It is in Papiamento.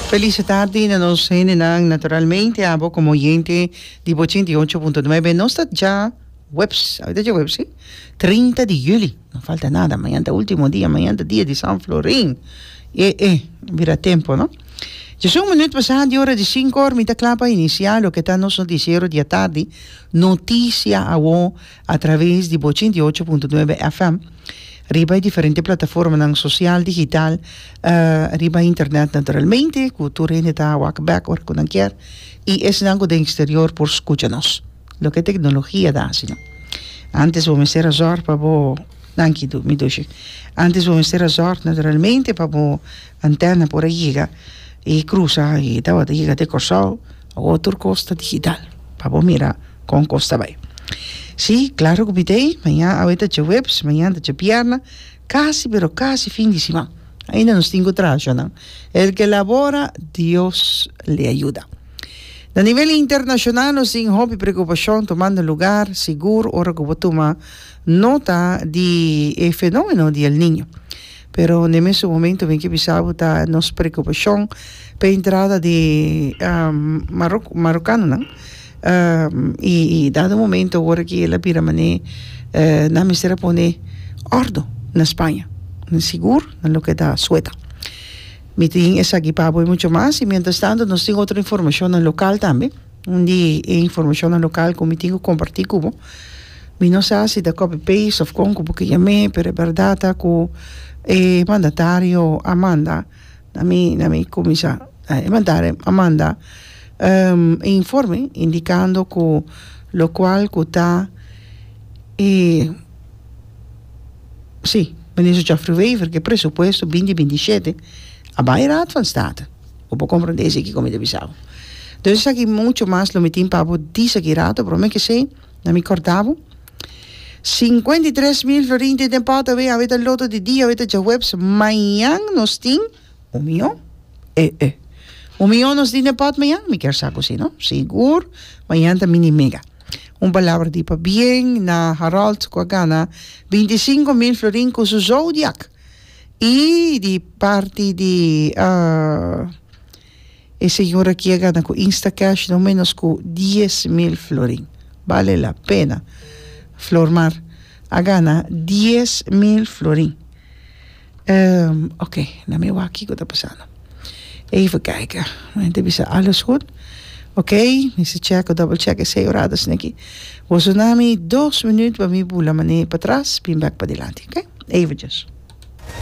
Felice tardi na nos hendenan, naturalmente abo como oyente di bo ochenta y ocho punto nuebe. Nos ta dja webs, awe ta dja webs si? Trinta di juli, no falta nada, mañan ta ultimo dia, mañan ta dia di San Florin, e e bira tempo no. Djasun minuut pasá di ora di sinku, mi ta kla pa iniciá loke ta nos noticiero di atardi, noticia awor. a traves di bo ochenta i ocho punto nuebe FM riba e diferente plataformanan sosial, digital, riba internet naturalmente, ku tur hende ta wak bèk ora ku nan kier, i esnan ku den eksterior por skucha nos. Loke teknologia ta hasi nou. Antes bo mester a zòrg pa bo, danki du, mi dushi, antes bo mester a zòrg naturalmente pa bo antèna por a yega i krusa i tabata yega te Kòrsou, Otro cos ta digital. Pa bo mira con cos ta bay. Si, claro cu bidey, maña, awe ta djahuebs, mañan ta djabierna, casi pero casi fin di siman. Ainda nos tin cu trahacionan. El que labora, Dios le ayuda. Na nivel internacional nos tin hopi preocupacion tumando lugar, sigur ora cu bo tuma nota di e fenomeno di El Niño. pero n'e mesun momento mi ke bisa bo ta nos preokupashon p'e entrada di Maroko marokanonan i i dado momento ora ki el a bira man'e nan mester a pone òrdu na Spaña nan sigur na loke ta Sueta mi tin esaki pa bo i mucho mas i mientras tanto nos tin otro informashonnan lokal tambe. Un di e informashonnan lokal ku mi tin ku kompartí ku bo, mi no sa si ta copy paste òf kon ku bo ke yam'é, pero e bèrdat ta ku e mandatario a manda na mi, na mi kuminsá, e mandatario a manda e informe indikando ku lokual ku ta e, si, Minister Geoffrey Wever ke presupuesto binti binti shete a bai Raad van State. Bo por comprende esaki cu mi ta bisa bo. Entonces esaki mucho mas lo mi tin pa bo dice aki rato, pero me kese na mi corda bo. Cincuenta y tres mil florin tin den pot awe, awe ta loto di dia, awe ta djahuebs, mañan nos tin un miyon, eh eh. Un miyon nos tin den pot mañan? Mi kier sa cu si no. Sigur mañan ta mini mega. Un palabra di pabien na Harold cu a gana binti cinco mil florin cu su zodiac. Y di parti di e señor aki a gana cu Instacash no menos cu dies mil florin. Bale la pena. Flormar a gana dies mil florin. Ehm, ok, na mi wak kico ta pasando. Even kijken. Nan ta bisa alles goed. Oké, mi sa check o double check esei oradas neki. Boso na mi dos minuut pa mi bula mané patras, bin bek padilanti. Oké, eventjes.